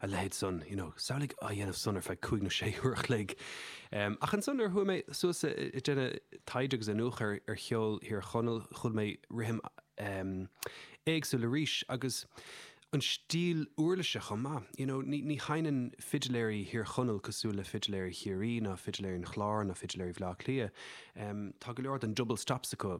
a leithéid san, you know, samhlaigh á dhéanamh san ar feadh cúig nó sé uair a chloig. Ach ansan nuair a chuaigh mé suas i i ndéanamh taighde agus iniúchadh ar ar cheol Thír Chonaill, chuala mé rithim éagsúil arís agus an stíl uirlise chomh maith. You know, ní ní sheinneann fidiléirí Thír Chonaill cosúil le fidiléirí Chiarraí ná fidiléirí an Chláir ná fidiléirí Bhleá Cliath. Tá go leor den double stops acu.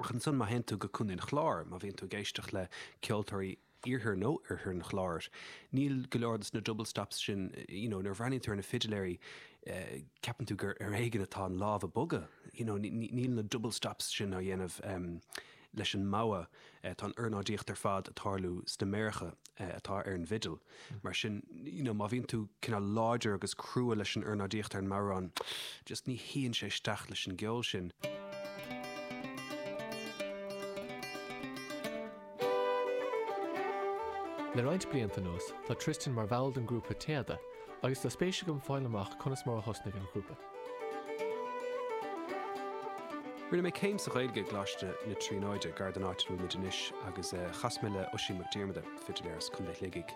Ach ansan, má théann tú go Contae an Chláir, má bhíonn tú ag éisteacht le ceoltóirí iarthar nó oirthear an Chláir, níl go leor de na double stops sin, you know, nuair a bhreathnaíonn tú ar na fidiléirí, ceapann tú gur ar éigean atá an lámh ag bogadh, you know, níl na double stops sin á dhéanamh leis an mbogha. Tá an ornáidíocht ar fad ag tarlú sna méaracha atá ar an bhfidil, mar sin you know má bhíonn tú cineál láidir agus crua leis an ornáidíocht ar an mbodhrán, just ní shuíonn sé isteach leis an gceol sin. Le roinnt blianta anuas, tá Tristan mar bhall den ghrúpa Téada, agus tá spéis agam fáil amach conas mar a thosnaigh an grúpa. Rinne mé céim sa Ghaeilge i gColáiste na Tríonóide, gar don áit a bhfuil muid anois, agus chas mé le Oisín Mac Diarmada, fidiléir as Contae Shligigh,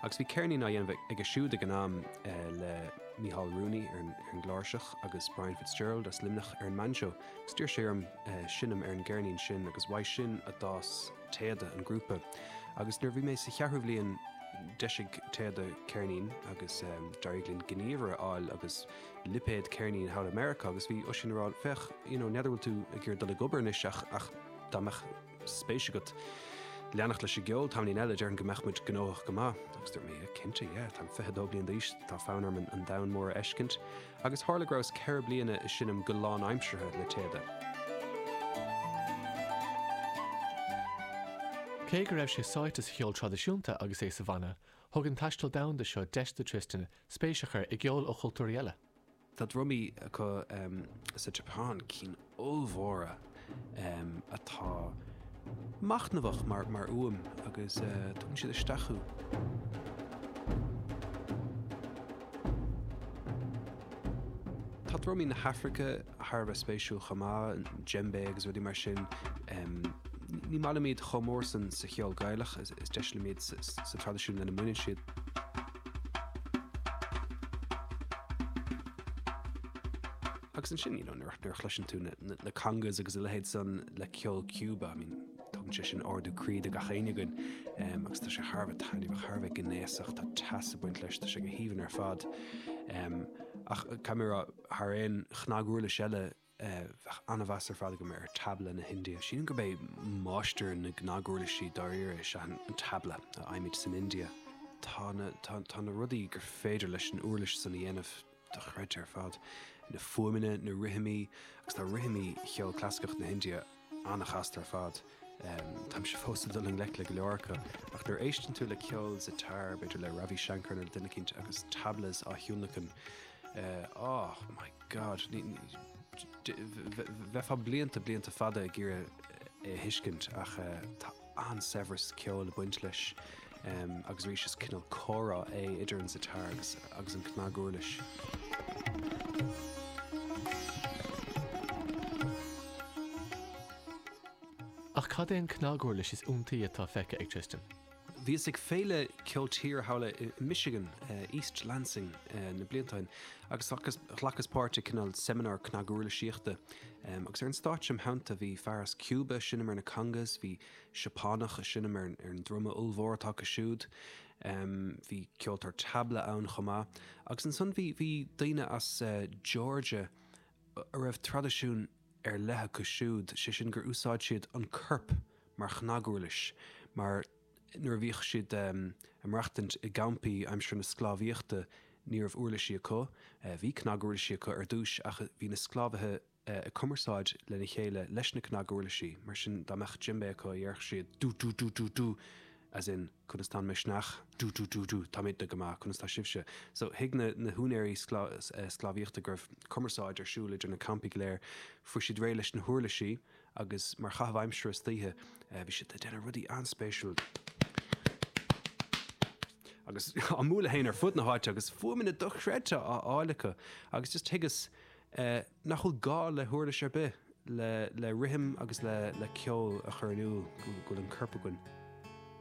agus bhí ceirnín á dhéanamh aige siúd ag an am le Michael Rooney ar an gcláirseach agus Brian Fitzgerald as Luimneach ar an mbanjo. D'iarr sé orm seinm ar an gceirnín sin agus uaidh sin a d'fhás téada an grúpa agus nuair a bhí mé sa cheathrú bhliain d'eisigh téada ceirnín agus d'éirigh linn gníomhaire a fháil agus lipéad ceirnín thall i Meiriceá agus bhí Oisín ag rá féach you know n'fheadar bhfuil tú ag iarraidh dul ag obair anois ach ach dá mbeadh spéis agat leanacht leis an gceol tamaillín eile déarfainn go mbeadh muid gnóthach go maith agus dúirt mé yeah cinnte yeah tá mé 22 bliain d'aois tá fonn orm an domhan mór a fheiscint Agus tharla go rabhas ceithre bliana ag seinm go lánaimseartha le Téada. Cé go raibh sé sáite sa cheol traidisiúnta agus é sa bhanna, thug an taisteal domhanda seo deis do Tristan spéis a chur i gceol ó chultúirí eile. Tá drumaí acu sa tSeapáin, cinn ollmhóra atá machnamhach mar fhuaim agus tugann siad isteach thú. Tá drumaí na hAfraice thar a bheith spéisiúil chomh maith, djembe agus rudaí mar sin. Ní maith liom iad chomh mór san sa cheol Gaelach, is deise liom iad sa traidisiún lena mbaineann siad. Agus ansin, you know, nuair a chloiseann tú na congas agus a leithéid san le ceol Cúba, I mean, tugann sé sin ardú croí do gach éinne againn um, agus tá sé thar a bheith taitneamhach, thar a bheith gnéasach, tá teas ag baint leis, tá sé go haoibhinn ar fad. Um, ach caithfidh mé a rá thar aon chnaguirlis eile eh, bheadh an-mheas ar fad agam ar tabla na hIndia. Sílim gurb é máistir na gcnaguirlisí dáiríre is ea an tabla a fhaighimid san India. Tá na, tá, tá na rudaí gur féidir leis an uirlis san a dhéanamh dochreidte ar fad, na fuaimeanna, na rithimí, agus tá rithimí cheol clasaiceach na hIndia an-chasta ar fad. Táimse fós ag dul i ngleic le go leor acu, ach nuair a éisteann tú le ceol sitar, b'fhéidir le Ravi Shankar nó le duine eicínt agus tablas á thionlacan, oh my God, bheifeá blianta, blianta fada ag iarraidh é a thuiscint ach tá an-saibhreas ceoil ag baint leis agus arís is cineál comhrá é idir an sitar agus an cnaguirlis. Ach cad é an cnaguirlis is iontaí atá feicthe ag Tristan? Bhíos ag féile ceol tíre thall i Michigan, East Lansing, an bhliain sin agus ghlacas páirt i cineál seimineár cnaguirlisíochta. Agus ar an stáitse im' theannta bhí fear as Cúba ag seinm ar na congas, bhí Seapánach ag seinm ar an druma ollmhór atá acu siúd, bhí ceoltóir tabla ann chomh maith. Agus ansan bhí daoine as Georgia a raibh traidisiún ar leith acu siúd, sé sin gur úsáid siad an corp mar chnaguirlis, mar. nuair a bhíodh siad ag maireachtaint i gcampaí aimsir na sclábhaíochta ní raibh uirlisí acu. Bhí cnaguirlisí acu ar dtús ach bhí na sclábhaithe ag cumarsáid lena chéile leis na cnaguirlisí, mar sin dá mbeadh djembe acu dhéarfadh siad du du du du du as in conas tá an misneach, du du du du táimidne go maith, conas tá sibhse? So thuig na húinéirí sclábhaíochta go raibh cumarsáid ar siúl idir na campaí go léir. Fuair siad réidh leis na huirlisí. agus mar chaitheamh aimsire istoíche bhí siad ag déanamh rudaí an-spéisiúil. Agus á mbualadh féin ar fud na háite agus fuaimeanna dochreidte á fháil acu agus just thuigeas nach bhfuil gá le huirlis ar bith le rithim agus le ceol a chur in iúl go bhfuil an corp againn.